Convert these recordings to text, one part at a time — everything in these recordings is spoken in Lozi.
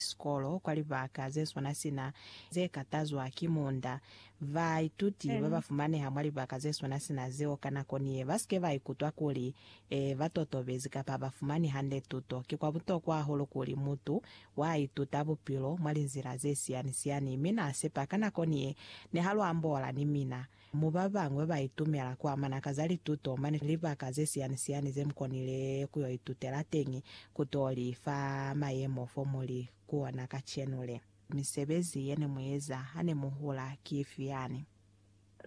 sikolo kwa libaka ze swana sina ze katazwa ki munda. Baituti ba ba fumaneha mwa libaka ze swana sina zeo ka nako ni ye ba si ke ba ikutwa kuli ba totobezi kapa ha ba fumani hande tuto. Ki kwa butokwa hahulu kuli mutu wa ituta bupilo mwa linzila ze siyani-siyani mi na sepa ka nako ni ye ne ha lu ambola ni mina. Mo ba bañwi ba itumela ku amana ka za lituto mane libaka ze siyani-siyani ze mu konile ku yo itutela teñi, ku t'o li fa mayemo fo mu li ku ona kacenu le. Misebezi ye ne mu eza ha ne mu hula ki ifi yani?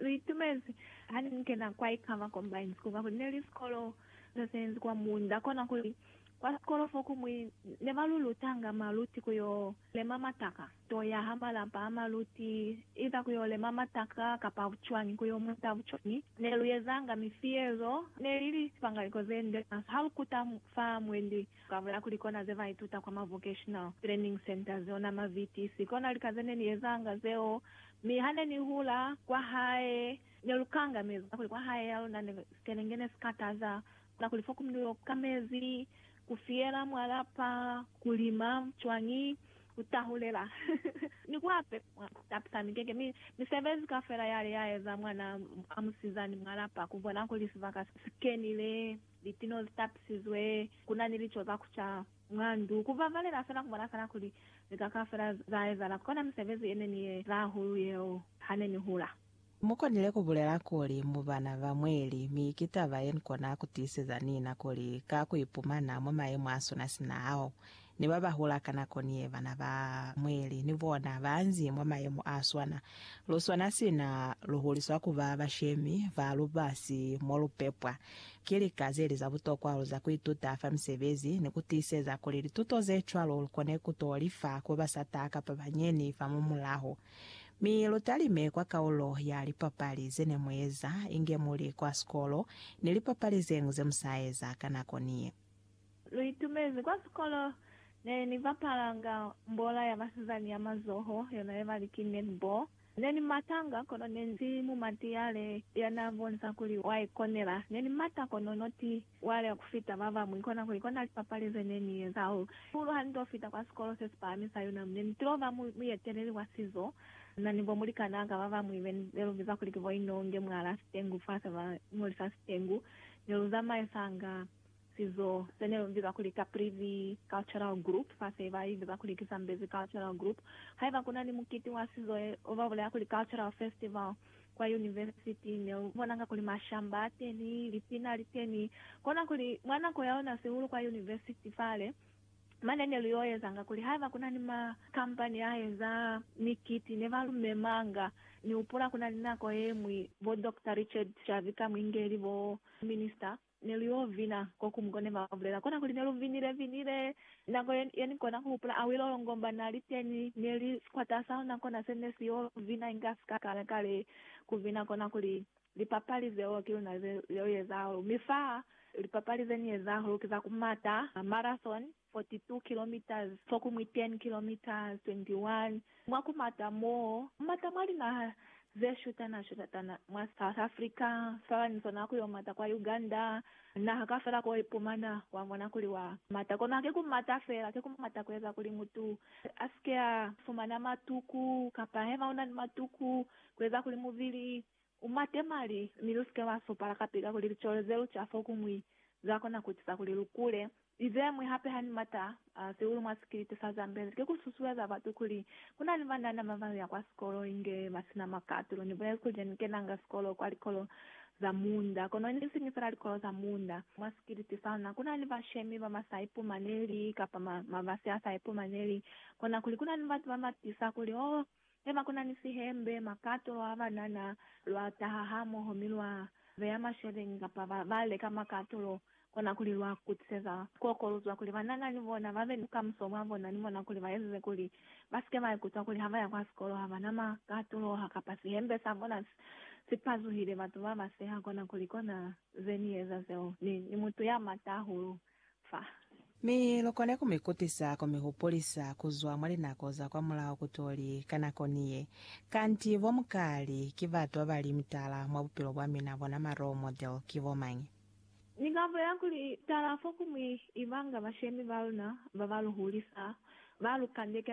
Lu itumezi ha ne mu kena kwa Ikama Combined School kakuli ne li sikolo se senzi kwa munda, kona kuli kwa sikolo fo kumwi ne ba lu lutanga maluti ku yo Lema mataka. To yaha malapa a maluti, iza ku yo lema mataka kapa bucwañi, ku yo muta bucwañi. Ne lu ezanga mifi yezo, ne li li pangaliko ze nde fasi ha lu kuta fa mwendi. Ka bula kuli kona ze ba ituta kwa ma vocational training centers, ona ma VTC. Kona lika ze ne ni ezanga zeo. Mi ha ne ni hula, kwa hae, ne lu kanga mezi, kakuli kwa hae ya luna ne sikelenge ne si kataza. Kakuli fo ku mi lu yo ka mezi, Ku fiyela mwa lapa, ku lima cwañi, ku tahulela, ni ku apepa mwa ku tapisa mikeke, mi misebezi kaufela yale ya eza mwana a musizani mwa lapa, ku bona kuli sibaka si kenile, litino zi tapisizwe, ku na ni lico za ku ca mwa ndu, ku babalela fela, ku bona fela kuli lika kaufela za ezahala. Kona misebezi ye ne ni ye eza hahulu yeo ha ne ni hula. Mukonile kubulela kuli mu bana ba mweli, mi ki taba yenikona kutiiseza nina kuli ka kuipumana mwa mayemo asuna sina ao, ni babahula ka nako niye, bana ba mweli ni bona baanzi mwa mayemo aswana. Luswana sina luhuliswa kuba bashemi ba lubasi molupepwa. Ki lika zeli za butokwa hahulu za kuituta fa misebezi ni kutiiseza kuli lituto zecwalo lukone kuto lifa kuba sata kapa banyeni famumulaho. Mi lu talime kwa kaulo ya lipapali ze ne mu eza inge mu li kwa sikolo ni lipapali ze ñwi ze mu sa eza ka nako ni ye. Lu itumezi kwa sikolo ne ni bapalanga mbola ya basizani ya mazoho, yona ye ba li ki netball. Ne ni matanga, kono ne ni si mumatiyale ya n'a bonisa kuli wa ikonela. Ne ni mata kono no ti Waya ku fita ba bañwi kona kuli kona lipapali ze ne ni eza hahulu ha ni to fita kwa sikolo se si pahami sa UNAM. Ne ni tilo ba muyeteleli wa sizo na ni bo mulikanaa ka ba bañwi be ne lu biza kuli ki bo Inonge mwa la Sitengu fa se ba ñolisa Sitengu. Ne lu zamaisanga sizo se ne lu biza kuli Caprivi Cultural Group fa se ba i biza kuli ki Zambezi Cultural Group. Haiba ku na ni mukiti wa sizo, ba bulela kuli Cultural Festival, kwa yunivesiti, ne u bonanga kuli mashamba a teni, lipina li teni. Kona kuli, mwa nako ya ona sihulu kwa yunivesiti fale, mane ne lu y'o ezanga kuli haiba ku na ni makampani a eza mikiti ne ba lu memanga. Ni hupula ku na ni nako ye ñwi bo Doctor Richard Xavi Kamwingeli, bo Minista Ne lu yo vina ko kumu ko ne ba bulela kona kuli ne lu vinile vinile. Nako ye, ye ni kona ku hupula Awilo Longomba na li teñi, ne li sikwata sa luna kona se ne si yo vina inga sika kale kale ku vina kona kuli, Lipapali zeo ki luna ze, zeo ye zahulu. Mi fa lipapali ze ni ye zahulu ki za ku mata, marathon, 42 kilometres fo ku mwi 10 kilometres 21 mwa ku mata mo mata mwa linaha ze shutana shutatana mwa South Africa sala ni sona ku yo mata kwa Uganda naha kafela ko ipumana wa mona kuli wa mata kono hake ku mata fela ke ku mata ku eza kuli mutu asike a fumana matuku kapa hema una ni matuku ku eza kuli mubili U mate mali, mi lu si ke lwa supala kapi kakuli licolo ze lu ca fokumwi za kona ku eciza kuli lu kule. Li ze ñwi hape ha ni mata sihulu mwa sikiliti sa Zambezi ki ku susueza batu kuli ku na ni banana ba ba ya kwa sikolo inge ba si na makatulo. Ni bulezi kuli ne ni kenanga sikolo kwa likolo za munda, kono ne si ni fela likolo za munda. Mwa sikiliti sa luna ku na ni bashemi ba ba sa ipumaneli kapa mabasi a sa ipumaneli, kona kuli ku na ni batu ba ba tiisa kuli, Oh, Ne ba kuna ni sihembe, makato, lwa banana, lwa taha hamoho mi lwa beya masheleni kapa ba, ba leka makato lo kona kuli lwa kutiseza koko lu zwa kuli banana ni bona ba be ni bukamuso bwa bona ni bona kuli ba ezize kuli ba si ke ba ikutwa kuli ha ba ya kwa sikolo ha ba na makato lo ha kapa sihembe sa bona si, si pazuhile. Batu ba ba seha kona kuli kona ze ni eza zeo. Ni, ni mutu ya mata hahulu. fa. Mi lukone kumikutisa kumihupulisa kuzwa mwa linako za kwamulaho kutoli, ka nako ni ye, kanti bo Mkali ki batu babali mutala mwa bupilo bwa mina, bona ma role model ki bomañi? Ni ka bulela kuli, tala fokumwi ibanga bashemi baluna baba luhulisa, ba lu kandekela.